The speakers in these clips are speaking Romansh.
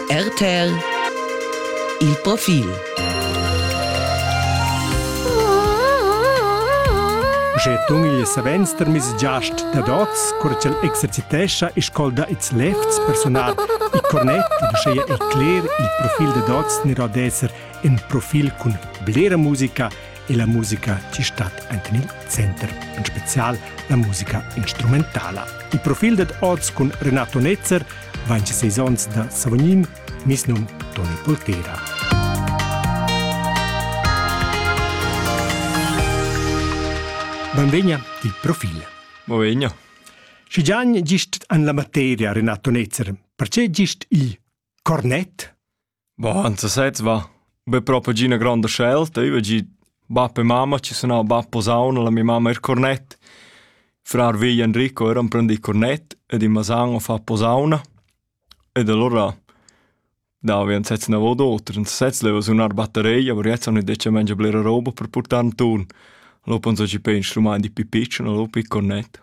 RTL Il profil Sche tun il savens termis giast dad oz, cur ch'el exercitescha e scolda ils lefts personal, il cornet, uschea il cler, il profil dad oz nera d'esser in profil cun blera musica e la musica ci stat enten il center, en spezial la musica instrumentala. Il profil dad oz cun Renato Netzer vain seis ons da Savognin, mis num Toni Poltera. Benvegna di profil. Benvegna. Schi gian gist an la materia, Renato Netzer, perché gist il cornet? Bah, za sez va. Be propa gi üna gronda scelta. Io vau gi bap e mamma chi sun nà, bap posauna, la mia mamma eir cornett. Frar vegl Enrico eira imprendì cornett ed in Masan ho fat posauna. Ed alura davo ün sez ünavo u d'auter. In sez leva sunar batteria, però jetzt han detg mangia blera roba per purtar inturn. Allura pon so chi pè instrumaint di pi pitschen, allura pi cornett.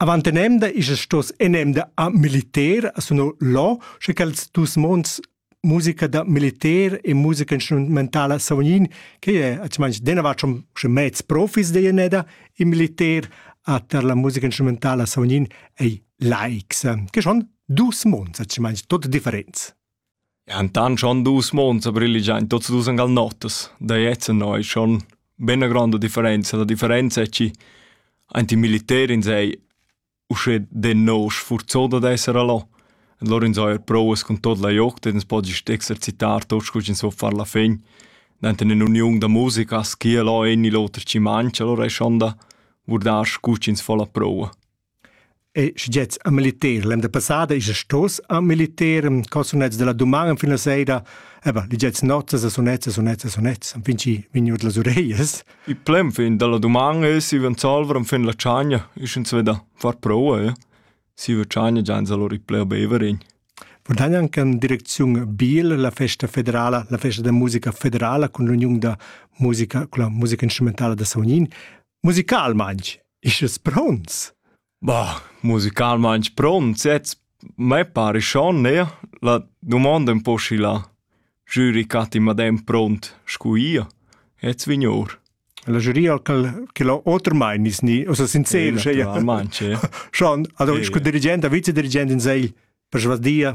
Avant enemda isas stos enemda a militer a suno lo, sche quels dus monds musica da militer e musica instrumentala savognin che è atschmans denavart schon schon mez profis de jeneda in militer a ter la musica instrumentala savognin ei laics che schon dus monds atschmans tot differents. Entant schon dus mons a briligiain tuots dus ün gal notas, da jetzt ennà es schon be üna gronda differenza. La differenza è chi aint il militer ins ei uschè denò sfurzà dad esser a là. E lur ins haja prouas cun tot la jogt ed ins po gist exercitar tot scu ch'ins vo far la fin. Dent in ün'uniun da musica as skia là ün il oter chi mancha, alura es schon da vurdar scu ch'ins fo la proua. E schgets a militer. L'emda passada esa stos a militer, co sunnets da la duman fin la seira. Eba, ligets nozzas e sunezzas, sunezzas, sunezzas, fin chi vegn our las ureglias. Il plem fin da la duman es si van salver fin la tschagna, isch ins veda far proua, ja. Si va tschagna già ins allora pleu beverin. Vurdagnan can direcziun Biel, la festa federala, la festa da musica federala cun l'uniun da musica, con la musica instrumentala da Saunin. Musicalmaing, isch es pronts? Bah, musicalmaing pronts jetzt. Me pare schon, ne? La domanda un po' schi là. Jüri catti madem pront, scu ia. Jetzt vignor. La giuria che l'ho otermain is ni, osa sincer, sche ja. Schon, also, scu dirigent, vicedirigent in segl, per svasdia.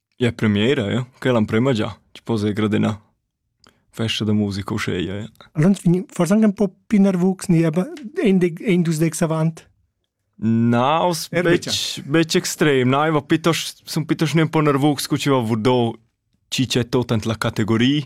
Ja premiera ja, quella amprema già, ti poss ir gradenà. Festa da musica uscheia, ja. Allons vegn forsa anche un po' più nervus, ni aber ein dus dex avant. Na, aus betg, betg extrem, na, ich war pitos, sunt pitos ne un po' nervus, cu ci va vurdò ci c'è tot ant la categoria,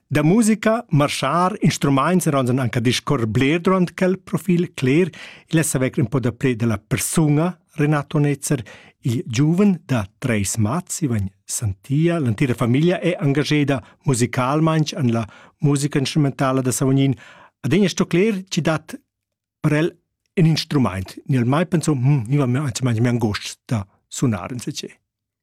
Da musica, marschar, instrumaints eran anche discorrer bler durant quel profil cler, il es avec un po da pled della persuna Renato Netzer, il giuven da treis mats, Ivan Santia, l'antira famiglia è engageda musicalmain an la musica instrumentala da Savognin. Adegna sto cler, ci dat per el un instrument. Nel mai penso, hm, io mi anzi mi angost da sunar in se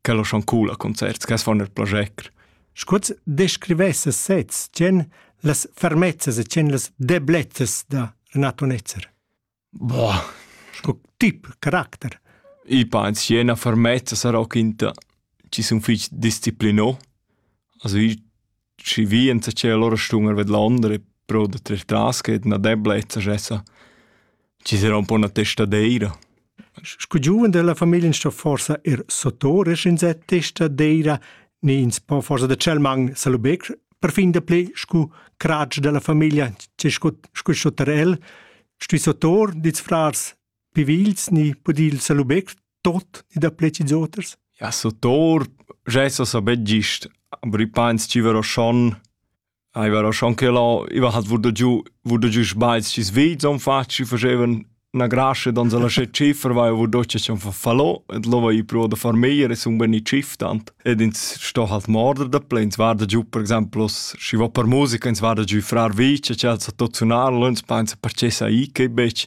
quel o schon cool a concerts, che as fan el plager. Scuoz descrivesse sez, tgen las fermezzas e tgen las deblezzas da Renato Netzer? Boah, sco tip, caracter. I pa in siena fermezza sarà quinta ci sun fich disciplinò. Also i Schi vient che allora stun a vedlonder pro da tres tras che na deblezza jessa. Ci sarà un po' 'na testadeira. Scu giuven della famiglia sto forsa ir sottoresch in se testadeira, ni ins po forsa da cel man salubec perfin da ple scu cratsch della famiglia, che scu scu sotterel, stui sottor dits frars Pivils ni pudil salubec tot ni da plets oters? Ja, so tor, gesso so bet gist, aber i pains ci vero schon, ai vero schon che lo, i va hat wurde giù, wurde giù sbaiz ci svit son fatg, ci facevan na grasce dan la sche ciffer vai wo doch schon verfallo et lo vai pro da far meier es un beni ciftant ed ins sto halt morder da plen war da giù per esempio si va per musica ins war da giù frar vice chat so tot sunar lons painsa percessa i che bec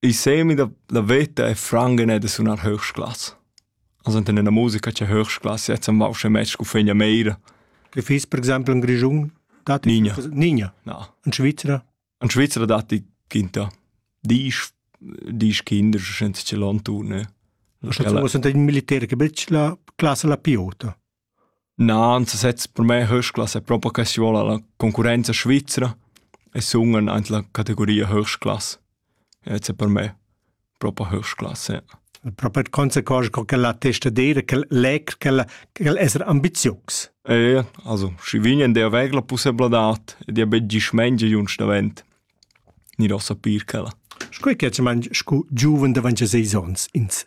Ich sehe mich, der, der Wetter e Franken nicht so nach Höchstklasse. Also in einer Musiker che Höchstklasse jetzt am Walscher Match ku fegna meira. Che fis per esempio in Grigiun? Dat Nigna. Nigna. No. Ein Schweizer? Ein Schweizer dat die Kinder. Die ist die ist Kinder, schon ce l'on turne. Sind die Militär che bella classe la piota? Na, ansasezs per me höchsklasse propa che si vola la concurrenza svizra e sun aint la categoria höchstklasse. Jetzt è per me propa höchstklasse, ja. Propa d' consequenza co ch'el attesta d'eira ch'el leg ch'el ch'el esser ambizius. E also schi vign der aver la pussebladad ed ia be gist mengia junch davent. Ni do sapir ch'ella. Sco che man scu giuven davanti a seis ons ins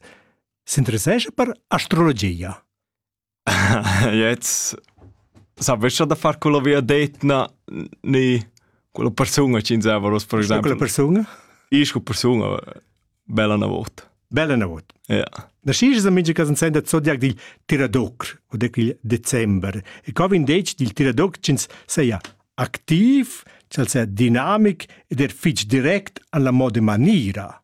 s'interessescha per astrologia. Jetzt sapescha da far quella viadetna ni quella persuna ch'inzava ros per exempel. Quella persuna? Isch quella persuna bella na vot. Bella na vot. Ja. Na schi's amici cas in senda zodiac dil Tiradoc o de quil december. E co vin detg dil Tiradoc ch'ins seia activ, ch'al sea dinamic ed er fitg direct alla moda manira.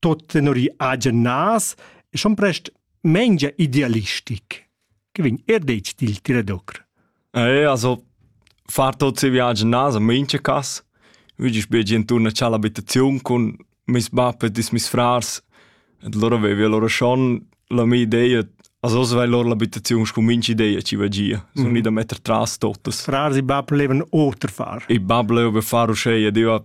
tot tenor i agen nas e schon prest mengia idealistic che vegn er detg dil tiradocr. Eh, also far tot se viagen nas a mincha cas. Vidisch be inturn a c'ha l'abitaziun con meis bab e dis meis frars et loro avevia loro schon la mia ideia also svai loro l'abitaziun con mincha ideia ci va gia sono mm -hmm. da metter tras totas frars e bab levan oter far i bab leva far uscei e diva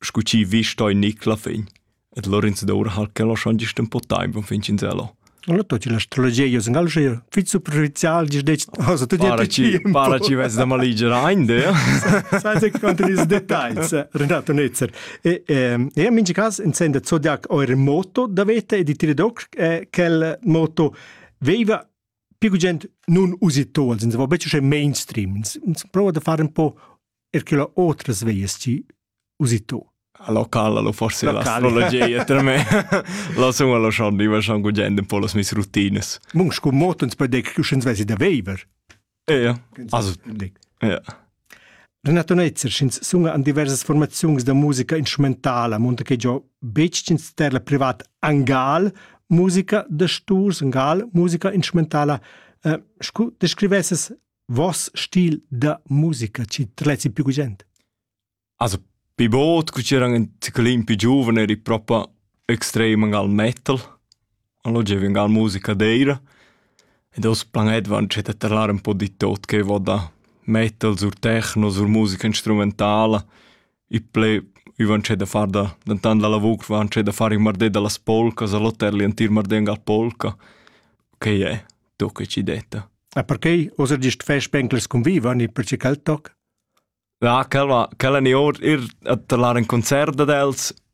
scu chi vi stoi Nicla fin, et Lorenz d'Or hal che lo schon gist un po taimp un fin cinzello. Allora tu ci l'astrologia io sin alger fit superficial gis dec cosa tu para ci para ci ves da maligera ein de sai se quanto dis details Renato Netzer e e in ci cas intende zodiac o remoto da vete e di tire doc quel moto veiva più gent nun usi to als in se va becce mainstream ins prova da fare un po' er che la otras veias ci usitò a locala lo forse l'astrologia per me la sun alla schon diva schon gugend un po las mis routines mun scu motens per dec che schens vesi da veiver ja also ja Renato Netzer schins sunga an diversas formaziuns da musica instrumentala, monta che giò becins ter la privat angal musica da sturs, angal musica instrumentala, eh, scu descrivesses Voss stil da musica chi trezzi pü gugent? Also pi bod cu c'eran ün chelin pi giuven eri propa extrem gal metal. Allora giovi ün gal musica d'eira ed oz planedavan dschet da terlar ün po di tot che vo da metal sur techno, sur musica instrumentala. i ple i van da far da dentant la lavur van da far in mardet da las polcas a l'hotel l'entir mardet gal polca che è to che ci detta E perché oser gist fais spencles convivan ir per ci quel toc? Ja, quella, quella ni or ir a talar in concert ad els